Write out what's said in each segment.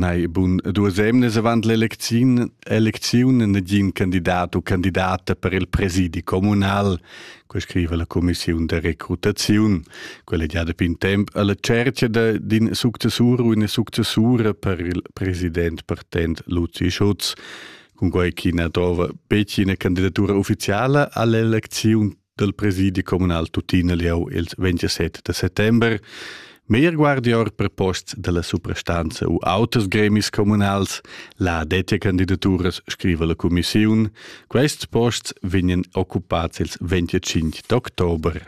Nei, bun, duas emnes avant l'elecziun elecziun negin candidat u candidata per il presidi communal, quei scriva la commissiun de recrutaziun. Quella già da pin temp alla cercia d'in successur u una successura per il president partent Luzi Schutz. Cun quei chi na trova betg ina candidatura ufficiala all'elecziun dal presidi communal tuttina lieu il 27 de settember. Meir guardior per posts della suprastanza u auters gremis communals, la dettia candidaturas scriva la commissiun, quests posts vegnan occupats il 25 d'october.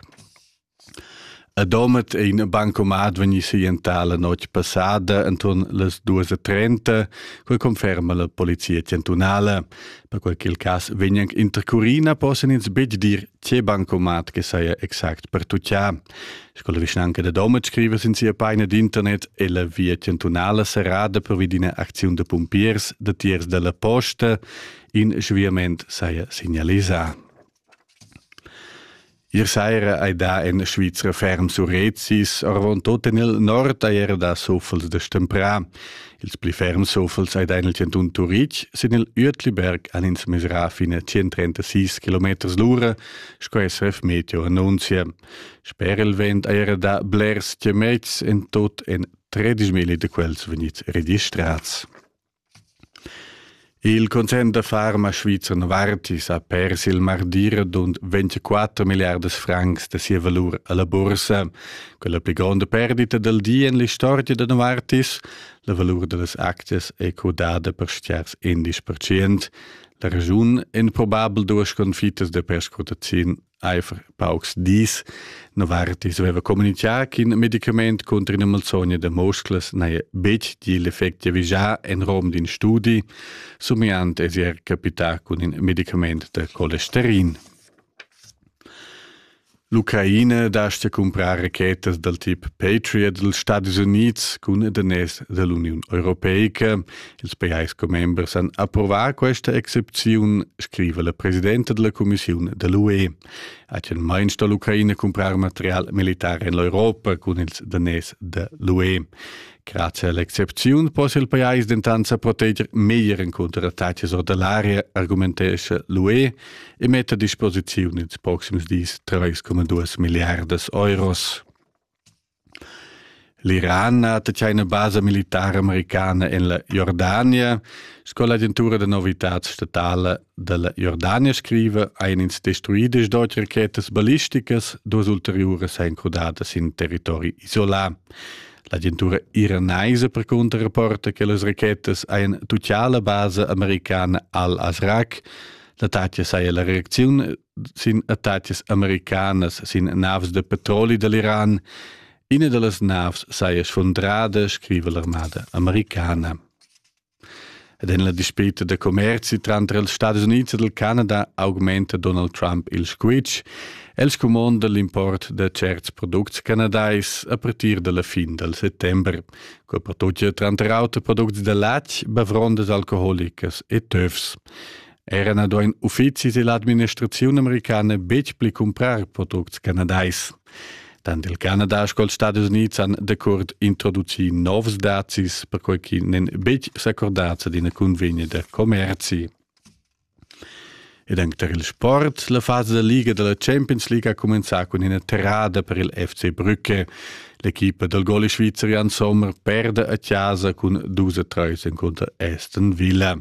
A Domat è in bancomat vegni sientà la notg passada enturn las duas e trenta, quai conferma la polizia chantunala. Per quel ch'il cas vegn anche intercurina possan ins betg dir tge bancomat che saja exact per tuccià. Sco la vischnanca da Domat scriva sin sia paina d'internet è la via chantunala serrada pervi d'ina acziun da pumpiers datiers dalla posta. In sviament saja signalisà. Ier saira hai dà en Svizra ferm surrezzis, arvantut en il nord hai era dà suffels da stemprà. Ils pli ferm suffels hai dà en il chantun Turitg. Sin il Uetliberg han ins mesrà fin a 136 km l'ura, sco SRF Meteo annunzia. Sper il vent hai era dà blers chamets, en tot en 13.000 da quels vegnids registrads. Il concern da farma svizzer Novartis ha pers il mardir d'und 24 milliardas francs da sia valur alla bursa, quella pli gronda perdita del di en l'istorgia da Novartis, la valur dellas aczias è codada per stiars 11%, la ragiun en probabel duas sconfittas da perscrutaziun Eifr paucs dis Novartis aveva communichà ch'in medicament contro ina malsogna da musclas n'haja betg gì l'effect giavischà en rom d'in studi, somiant è er capità cun in medicament da colesterin. L'Ucraina dastia cumprar rachetas dal tip Patriot dals Stadis Unids cun daners da l'Uniun Europeica Ils pajais commembers han approvà questa excepziun, scriva la presidenta della Commissione dell'UE. Hagen mai sto l'Ucraina comprar material militar en l'Europa cun ils danès de l'UE. Grazie all'excepziun possa il pajais dentant sa proteger meglier en contro attacks or dell'area, argumentescha l'UE e mette a disposizione ils proxims dis 3,2 miliardas euros. L'Iran ha tatschà ina basa militara americana en la Jordania. Sco l'agentura da novitads statala da la Jordania scriva, hajan ins destruì d'auti rachetas ballisticas. Duas ulteriuras èn crudadas sin territori isolà. L'agentura iranaisa percunter rapporta che las rachetas hajan tutgà la basa americana al-Azraq. L'attacca saja la reacziun sin attacas americanas sin naves de petroli dell'Iran. Ina dallas naves saia sfundrada, scrive l'armada americana. Ed en la dispita de commerzi tranter els Stati Uniti e del Canada augmenta Donald Trump il squitsch. El scumonda l'import de certs products canadais a partir della fin del settembre, co per tutti tranter auter producti de latg, bavrondas alcoholicas e töfs. Era na duain uffizis e l'administraziun americana betg pli cumprar products canadais. Tant il Canada sco ils Stadis Unids han decurt introducì novs dazis, perquai ch'i n'èn betg s'accordads ad ina cunvegna da commerzi. Ed anche per il sport, la fase da liga della Champions League ha cominciato con una terrada per il FC Brücke. L'equipa del gole svizerian Sommer perde a casa con 2-3 contro Aston Villa.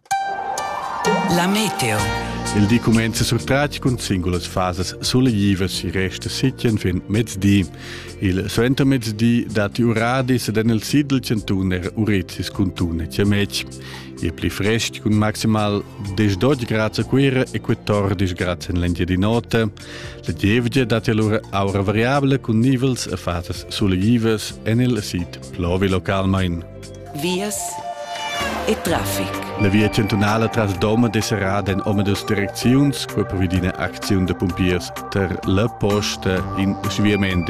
La meteo. Il di cumenza surtratg cun singulas fasas suleglivas e resta sitien fin mezdi. Il suentermezdi datti uradis ed en il sid del Centuner Urizis cun Tune Ciamec. Il pli frest cun maximal 10-12 grad a Cuira e 14 grad en l'Engiadinota. La gievgia datti allora aura variabile cun nivels e fasas suleglivas en il sid plovi localmente. vias e traffic. La via chantunala tras Doma è serrada en omadus direcziuns, quai provi d'ina acziun da pumpiers tar la posta in sviament